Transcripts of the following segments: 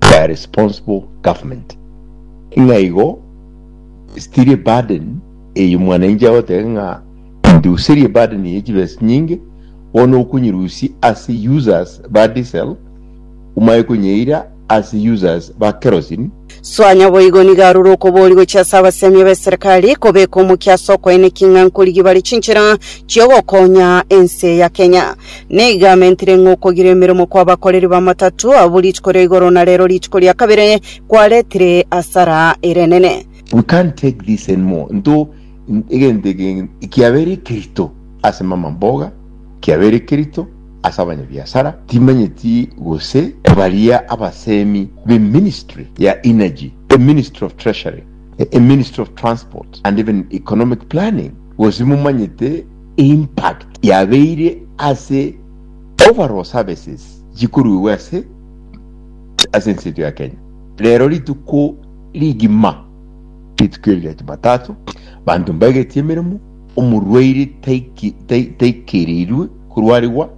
by a responsible government. Ng'a igo still a burden eye mwananchi agoteba ng'a nduserie burden ye chibesa chinyinge bono okonyirusi ase users ba diesel omanye konyeira ase users ba kerosene Soa nyaboigo nigo arure okobori gochia ase abasemia b'eserekari kobeka omokia ase okoenekia ng'a nkorigia bare chinchera chiogokonya ense ya Kenya. Nigo amentire ng'a okogira emeremo kw'abakoreri b'amatato abwo rituko ria igoro na rero rituko ria kabere kwaretire hasara ere nene. We can't take this anymore into egento eke kiabeire ekerito ase mama mboga, kiabeire ekerito ase abanyabiasara, timanyeti gose baria abasemi be ministry ya energy, e ministry of treasury, e ministry of transport and even economic planning gose momanyete impact yabeire ase overall services chikoruegwa ase ase ense yetu ya Kenya. Rero rituko rigima rituko eri ria Jumatatu banto mbaegetie emeremo omorwaire taiki- tai- taikereirwe korwarigwa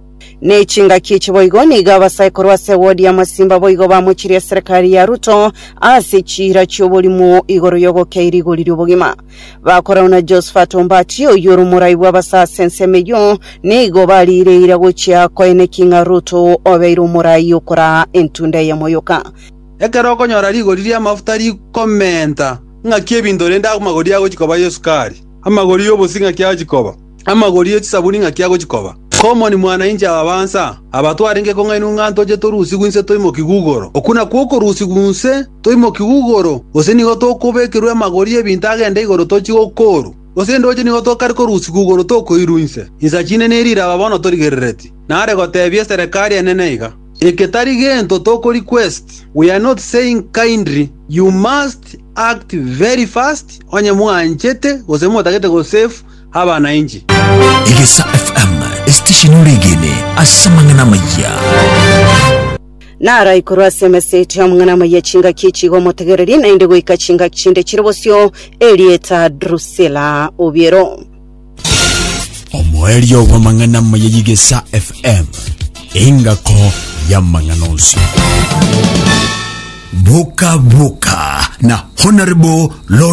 Ne chingaki echi boigo nigo abasae korwa ase wodi ya Masimba boigo bamochirie eserekari ya Ruto ase chiira chi'oborimo igoro y'ogokea erigori ri'obogima. Bakorau na Jehoshafati ombatie oyio ore omorai bw'abasase ensemo eyio, nigo bariireire gochia koeneki ng'a Ruto obeire omorai okoraa entunda ey'amoyoka. Ekero okonyora rigori ri'amafuta rikomenta, ing'aki ebinto rende amagori agochi koba y'esukari? Amagori y'obosie ing'aki agochi koba? amagori e chisabuni ng'aki agochikoba. Komoni mwanyainchi ababansa aba twarenge kong'ainwa ng'a ntoche torusigwe inse toimokigwe igoro. Okwo nakwo okorusigwa inse toimokigwe igoro, gose nigo tokobekerwa amagori y'ebinto agende igoro tochie gokoorwa, gose endoche nigo tokare korusigwa igoro tokoirwa inse. Insa chinene eri iraba bono torigerereti, nare gotebia eserekari enene iga, Eke tari gento tokoriquest, we are not saying kindly, you must act very fast onye mwanchete gose motagete gosave, abana inche. Egesa FM, esitesheni oregene ase amang'ana amayia. Narai korwa ase emeseti y'amang'ana amaya chingaki echi iga omotegereri, naende goika chingaki chinde chire bosio, erieta Drusilla Obiero. omoerio bw'amang'ana amaya y'egesa fm engako y'amang'ana onsi boka boka na honorable Lawrence